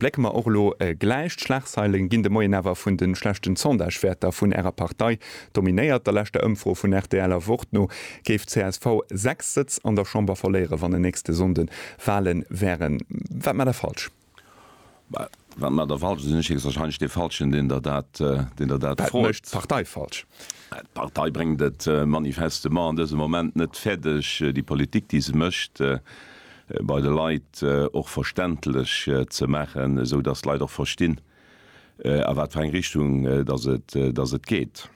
Blécke mer och elo gläich d'Schlagzeilen, ginn de Moien awer vun de schlechten Sondagewäerter vun Ärer Partei dominéiert. Der leschter Ëmfro vun rtl a Wort no géif csv 6 Sëtz an der Chamber verléieren, wann en nächste Sonnde Wahle wären. Wat maacht Der falsch? Well, wat maacht Der falsch? Da sinn ech héchstwahrscheinlech dee Falschen, deen Der dat, deen Der dat Wat froet. mécht d'Partei falsch? D'Partei bréngt et manifestement an dësem Moment net fäerdeg, déi Politik, déi se mécht, bei de Leit och verständlech ze maachen, esou datt d'Leit och verstinn, a wat fir eng Richtung datt et geet.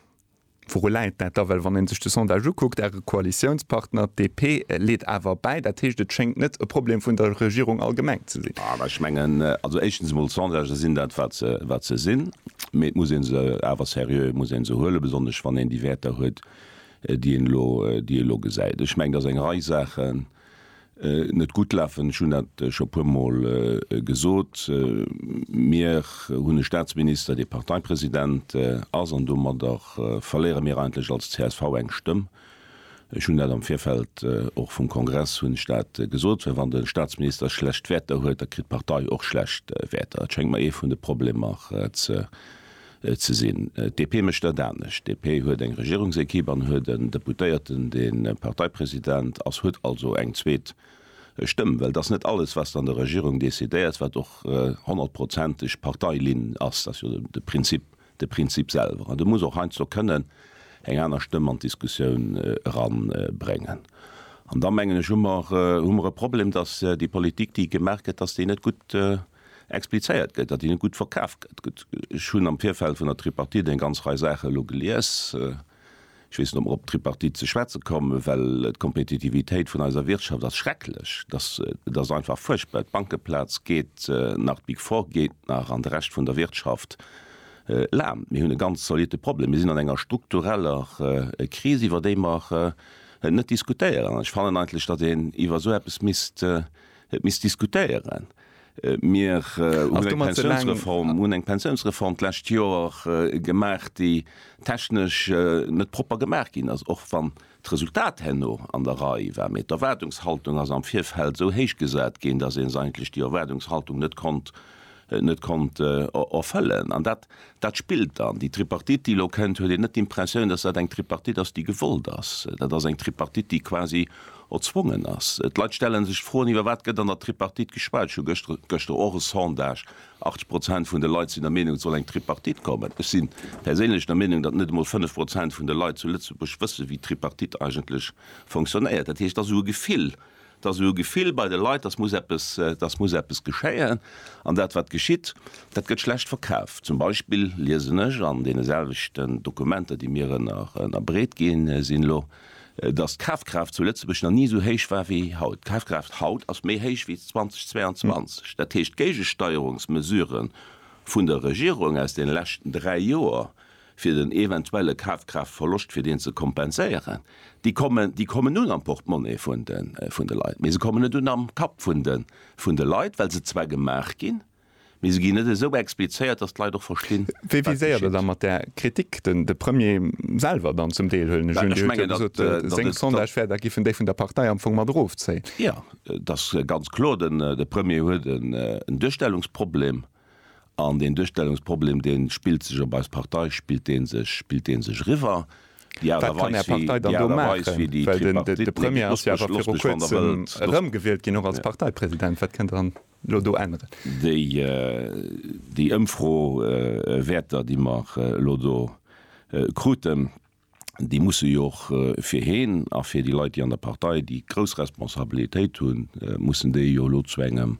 Wouru läit dat da? Well wann ee sech de Sondage ukuckt, Äre Koalitiounspartner, d'DP, leet awer bäi. Dat heescht, et schéngt net e Problem vun der Regierung allgemeng ze sinn. Ech mengen, also éischtens emol, d'Sondagen sinn dat, wat se sinn. Mee et muss ee se awer seriö, et muss ee se huelen, besonnesch wann een déi Wäerter huet, déi een elo, déi ee elo gesäit. Ech mengen, datt eng Rei Saachen net gutt lafen. Ech hunn dat scho e puermol gesot. Mir hunn e Statsminister, dee Parteipresident ass, an domadder verléiere mir eigentlech als csv eng Stëmm. Ech hunn dat am Virfeld och vum Kongress hunn ech dat gesot, well wann de Staatsminister schlecht Wäerter huet, da kritt d'Partei och schlecht Wäerter. Dat schéngt mer ee vun de Problemer ze sinn. D'DP mécht dat anescht. D'DP huet eng Regierungsequipe an huet en Deputéierten, dee Parteipresident ass, huet also eng zweet Stëmm, well et ass net alles, wat an der Regierung decidéiert, wat och honnertprozenteg Parteilinn ass. Dat ass jo de Prinzip De Prinzip selwer, an de muss och heiansdo kënnen eng aner Stëmm an d'Diskussioun eranbréngen. An da mengen ech, hu mer hu mer e Problem, datt déi Politik, déi gemaach gëtt, datt déi net gutt explizéiert gëtt, datt déi net gutt verkaf gëtt. Ech hunn am Virfeld vun der Tripartite eng ganz Rei Saache elo gelies. Ech weess net, ob mer op d'Tripartite ze schwätze kommen, well d'Kompetitivitéit vun eiser Wirtschaft ass schrecklech. Et ass einfach fuerchtbar. D'Bankeplaz geet nach, d'Big Four geet nach an de Rescht vun der Wirtschaft laamt. Mir hunn e ganz zolitte Problem. Mir sinn an enger struktureller Kris, iwwer déi mer net diskutéieren. An ech fannen eigentlech, datt een iwwer esou eppes misst diskutéieren. Mir hunn eng Pensiounsreform, hunn eng Pensiounsreform d'lescht Joer gemaach, déi technesch net propper gemaach ginn ass, och wann d'Resultat herno an der Rei war. Mee d'Erwaardungshaltung ass am Virfeld esou héich gesat ginn, datt ee eigentlech déi Erwaardungshaltung net konnt, net konnt erfëllen. An dat Dat spillt dann. Déi Tripartite, déi elo kënnt, huet een net d'Impressioun, datt dat eng Tripartite ass, déi gewollt ass. Dat ass eng Tripartite, déi quasi erzwongen ass. D'Leit stelle sech d'Froen, iwwer wat gëtt an der Tripartite geschwat. Ech hu gëschter, gëschter och e Sondage, 80 Prozent vun de Leit sinn der Meenung, et soll eng Tripartite kommen. Ech si perséinlech der Meenung, datt net emol 5 Prozent vun de Leit zu Lëtzebuerg wësse wéi d'Tripartite eigentlech fonctionnéiert. Dat heescht, et ass esou e Gefill. Et ass esou e Gefill bei de Leit, dass muss eppes, dass muss eppes geschéien. An dat, wat geschitt, dat gëtt schlecht verkaf. Zum Beispill liesen ech an deene selwechten Dokumenter, déi mir ënnerbreet gi sinn elo, dass d'Kafkraaft zu Lëtzebuerg nach ni esou héich war wéi haut. D'Kafkraaft haut ass méi héich wéi 2022. Dat heescht, d'Géigesteierungsmesurë vun der Regierung aus deene leschten dräi Joer fir den eventuelle Kafkraaftverloscht, fir deen ze kompenséieren, déi kommen, déi kommen un am Portemonnaie vun de, vun de Leit, mee se kommen net un am Kapp vun de, vun de Leit, well se zwar gemaach ginn, mee se ginn net esou explizéiert, dass d'Leit och verstinn, wat geschitt. Wéi viséiert Der da mat där Kritik den, de Premier selwer dann zum Deel, huelen ech un? Dir hutt jo gesot, seng Sondage wäer, da giffen déi vun der Partei am Fong mat erofzéien. Jo, et ass ganz kloer, den, de Premier huet en, en Duerstellungsproblem. An deen Duerstellungsproblem, dee spillt sech op eis Partei, spillt dee sech, spillt dee sech eriwwer. Déi Aart a Weis, wéi, déi Aart a Weis, wéi déi Tripartite, nee, lasst mech, lasst mech, wann Der wëllt, lasst mech, déi, déi Ëmfro, Wäerter, déi mer elo do kruten, déi musse jo och fir heen a fir déi Leit, déi an der Partei, déi grouss Responsabilitéit hunn, mussen déi jo elo zu engem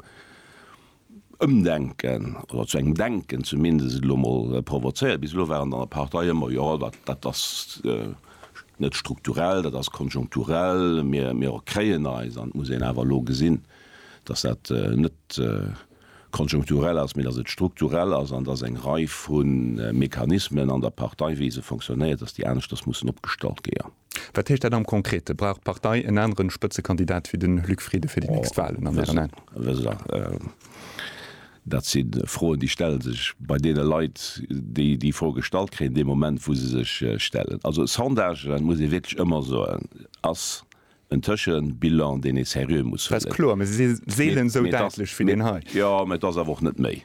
Ëmdenken oder zu engem Denken zumindest elo emol provozéieren. Bis elo waren an der Partei ëmmer, Jo, dat, dat ass net strukturell, dat ass konjunkturell, mir, mir kréien eis. An et muss een awer elo gesinn, dass dat net, konjunkturell ass, mee datt et strukturell ass an datt eng Rei vu Mechanismen an der Partei, wéi se fonctionnéiert, datt déi aneschters mussen opgestallt géa. Wat heescht dat am Konkrete? Brauch d'Partei en anere Spëtzekandidat wéi den Luc Frieden fir déi nächst Wahlen an Ären Aen? Oh, wësst Der, dat si Froen, déi stelle sech bei deene Leit, déi déi Fro gestallt kréien, dee Moment, wou se sech stellen. Also Sondagen, muss ee wierklech ëmmer soen, ass En Tëschen Bilan deen ee seriö muss huelen. Dass kloer, mee se si seelen esou däitlech wéi deen hei. Jo, mee et ass awer och net méi.